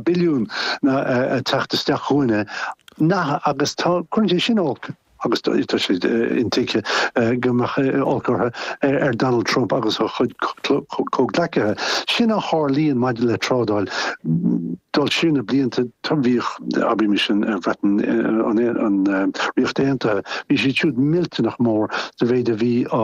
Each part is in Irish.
billiún ag teacht isteach chugainne nach agus tá cuireann sé sin olc agus tá tá sé intuigthe go mbeadh olc orthu ar ar Donald Trump agus a chuid comhghleacaithe. Sin a tharlaíonn maidir le trádáil. Dul siar na blianta tá bhíodh abraimis an Bhreatain an Ríocht Aontaithe bhí siad siúd millteanach mór sa mhéid a bhí á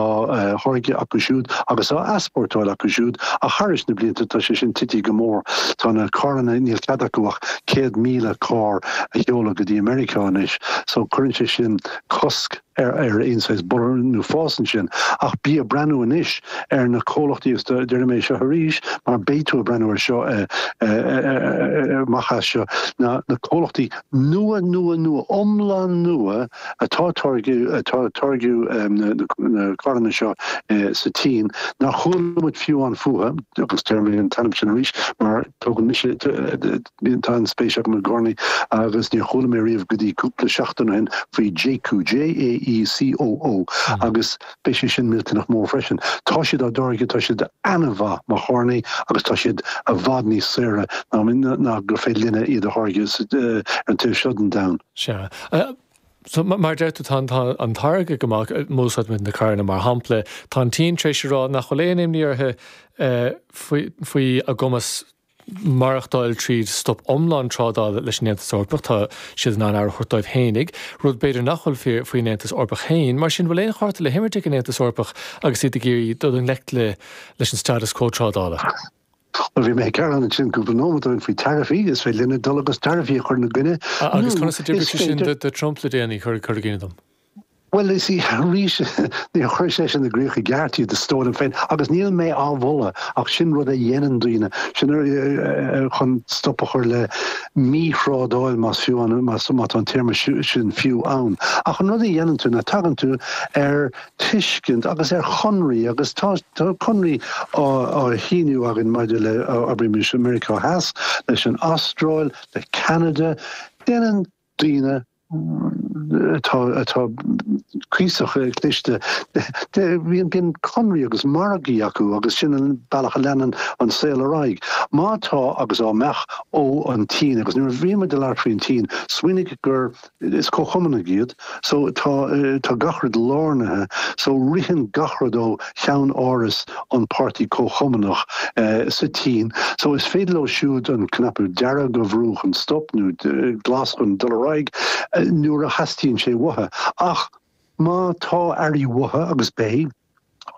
tháirgeadh acu siúd agus á easpórtáil acu siúd ach thar na blianta tá sé sin tite go mór. Tá na carranna, níl cead acu ach 100,000 carr a sheoladh go dtí Meiriceá anois so cuireann sé sin cosc ar aon saghas borradh nó fás ansin. Ach bí ag breathnú anois ar na comhlachtaí agus deirim é seo arís mar beidh tú ag breathnú ar seo amach as seo, na comhlachtaí nua, nua, nua, iomlán nua, atá ag táirgeadh na carranna seo sa tSín, nár chuala muid fiú fúthu, agus déarfaidh mé an t-ainm sin arís mar tugann mise, tá an-spéis agam i gcarrannaí, agus níor chuala mé riamh go dtí cúpla seachtain ó shin faoi Jaecoo, J-A-E-C-O-O, agus beidh sé sin millteanach mór freisin. Tá siad á dtáirgeadh, tá siad an-mhaith mar charrannaí, agus tá siad i bhfad níos saoire ná gur féidir linne iad a tháirgeadh ar an taobh seo den domhan. Sea. So, mar a deir tú, tá an táirgeadh, má úsáidimid na carranna mar shampla, tá an tSín tar éis a rá nach bhfuil aon imní orthu faoi a gcumas maireachtáil tríd stop iomlán trádála leis an Aontas Eorpach, tá siad in ann aire a thabhairt dóibh fhéinig, rud b'fhéidir nach bhfuil fíor faoin Aontas Eorpach féin. Mar sin, bhfuil aon chárta le himirt ag an Aontas Eorpach agus iad ag iarraidh dul i ngleic leis an status quo trádála? Nuair a bhí mé ag gearán ansin go raibh an iomad orainn faoi taraifí, is féidir linne dul agus taraifí a chur ina gcoinne, nó Agus conas a d'oibrigh sé sin do Trump le déanaí, cuir i gcuimhne dom? Bhuel, is arís, níor chuir sé sin i gcrích i gceart, iad a stóran féin, agus níl mé á mholadh, ach sin rud a dhéanann daoine, sin ar, ar, chun stop a chur le míthrádáil, más fiú an, más, má tá an téarma sin fiú ann. Ach an rud a dhéanann tú ná tagann tú ar tuiscint agus ar chonraí agus tá conraí á síniú againn maidir le abraimis Meiriceá Theas, leis an Astráil, le Ceanada. Déanann daoine atá atá cuíosach cliste bíonn conraí agus margaí acu agus sin an bealach a leanann an saol ar aghaidh. Má tá agus dá mbeadh ó an tSín agus nuair a bhí muid ag labhairt faoin tSín smaoinigh gur Is comhchumannaigh iad. So, tá, tá gach rud lárnaithe. So, ritheann gach rud ó cheann áras an Páirtí Comhchumannach sa tSín. So, is féidir leo siúd an cnaipe dearg a bhrú chun stop, nó glas chun dul ar aghaidh, nuair a theastaíonn sé uathu. Ach má tá earraí uathu, agus beidh,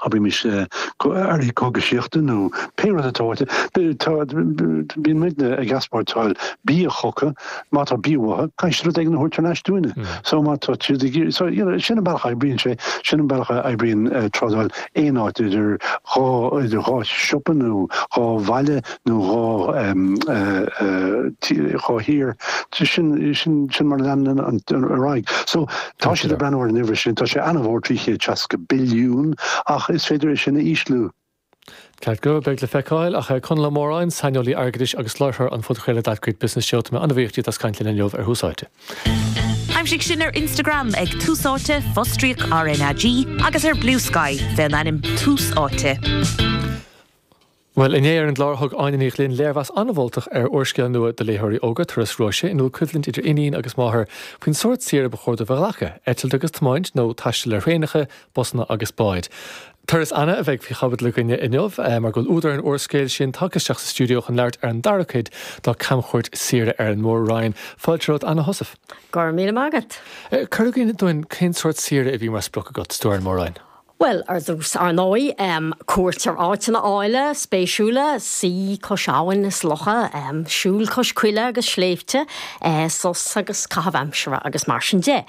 Abraimis earraí cógaisíochta nó pé rud atá uait, bíonn muid ag easpórtáil bia chucu. Má tá bia maith uathu, caithfidh siad rud éigin a thabhairt ar ais dúinne. So má tá siad ag iarraidh, so sin an bealach a oibríonn sé, sin an bealach a oibríonn trádáil aon áit, idir dhá, idir dhá siopa nó dhá bhaile nó dhá dhá thír. Sin, sin mar a leanann an, an, ar aghaidh. So, Tá siad ag breathnú ar an uimhir sin, tá sé an-mhór, 360 billiún, ach is féidir é sin a ísliú. Ceart go leor, beidh le feiceáil, ach a Chonaill Uí Mhóráin, saineolaí airgeadais agus láithreoir an phodchraolta That Great Business Show, tá mé an-bhuíoch díot as caint linn inniu ar Thús Áite. Aimsigh sinn ar Instagram ag Tús Áite, fostríoc RnaG, agus ar Bluesky, faoin ainm Tús Áite. Bhuel, inné ar an gclár thug Áine Ní Ghlinn léirmheas an-mholtach ar úrscéal nua do léitheoirí óga, Turas Róise, ina bhfuil coimhlint idir iníon agus máthair faoin sórt saoire ba chóir dóibh a ghlacadh, eitilt agus tiomáint nó taisteal ar thraenacha, busanna agus báid. Turas Anna a bheidh faoi chaibidil againne inniu mar go bhfuil údar an úrscéil sin tagtha isteach sa stiúideo chun labhairt ar an dara cuid dá camchuairt saoire ar an Mór-Roinn. Fáilte romhat, Anna Heussaff. Go raibh míle maith agat. Cuir i gcuimhne dúinn cén sórt saoire a bhí mar sprioc agat, is tú ar an Mór-Roinn? Bhuel, ar dtús, ar ndóigh, cuairt ar áiteanna áille, spéisiúla, suí cois abhainn is locha, siúl cois coille agus sléibhte, sos agus caitheamh aimsire agus mar sin de.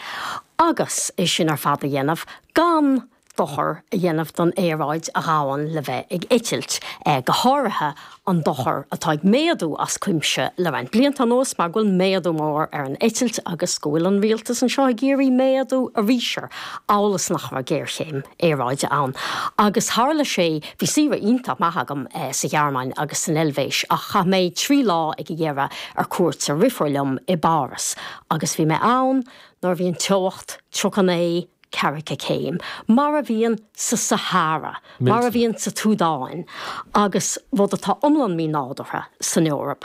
Agus é sin ar fad a dhéanamh gan dochar a dhéanamh don aeráid a ghabhann le bheith ag eitilt, go háirithe an dochar atá ag méadú as cuimse le roinnt blianta anuas mar go bhfuil méadú mór ar an eitilt agus go bhfuil an rialtas anseo ag iarraidh méadú arís air, amhail is nach raibh géarchéim aeráide ann. Agus tharla sé. Bhí saoire iontach maith agam sa Ghearmáin agus san Eilvéis ach chaith mé trí lá ag a deireadh ar cuairt ar dheirfiúr liom i bPáras agus bhí mé ann nuair a bhí an teocht 39 Ceathracha céim, mar a bhíonn sa Sahara, mar a bhíonn sa tSúdáin, agus rud atá iomlán mínádúrtha san Eoraip.